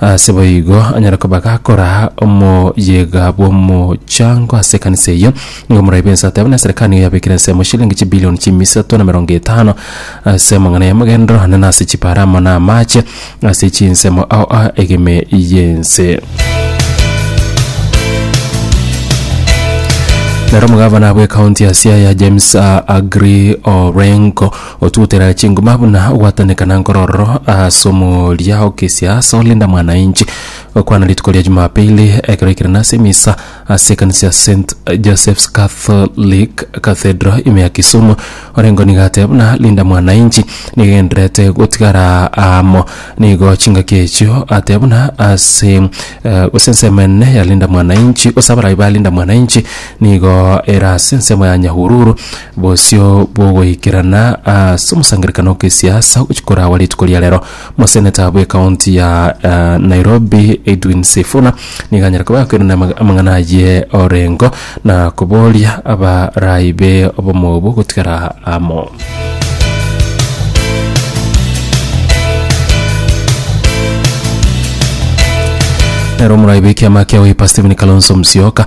Ase boigo, anyare koba gakoraa omoyega bw'omochango ase ekanisa eyio. Nigo moraibe ense ateba na eserekari nigo yabekire ensemo shilingi chibilioni chiimi isato na emerongo etano ase amang'ana y'amagenderero ane na ase chipaara amo na amaache ase chinsemo ao a egime y'ense. Nere omogavana bw'ekaunti ya Siaya James Aggrey Orengo Otuotera chingoma buna ogwataneka na nkororo as'omoria okesia as'o Linda Mwananchi okwana rituko ria Jumapili ekero aikerana ase emisa ase ekanisa ya St Joseph's Catholic Cathedral ime ya Kisumu orengo nigo atebe buna Linda Mwananchi nigo egenderete gotigara amo nigo chingaki echio atebe buna ase gose ensemo enene ya Linda Mwananchi gose abarai ba Linda Mwananchi nigo era ase ensemo ya Nyahururu Bosio bw'ogoikerana ase omosangererekano o kisiasa ogochia korawa rituko ria rero, moseneta bwe county ya Nairobi Edwin Sifuna nigo anyare koba akoirana ama- amang'ana aye orengo na koboria abaraai be obomo obwo gotigara amo. Nero omorwai bw'ekiama kia Wiper Stephen Kalonzo Musyoka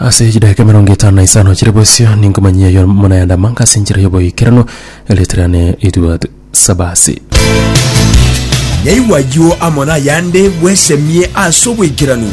Ase chidaeka emerongo etano na isano chire bosio ninkomanyia yo monayanda manka ase enchera y'oboikeranu eleterane Edward Sabasi. Yaigwa ayio amo nayande bwesemie ase oboikeranu.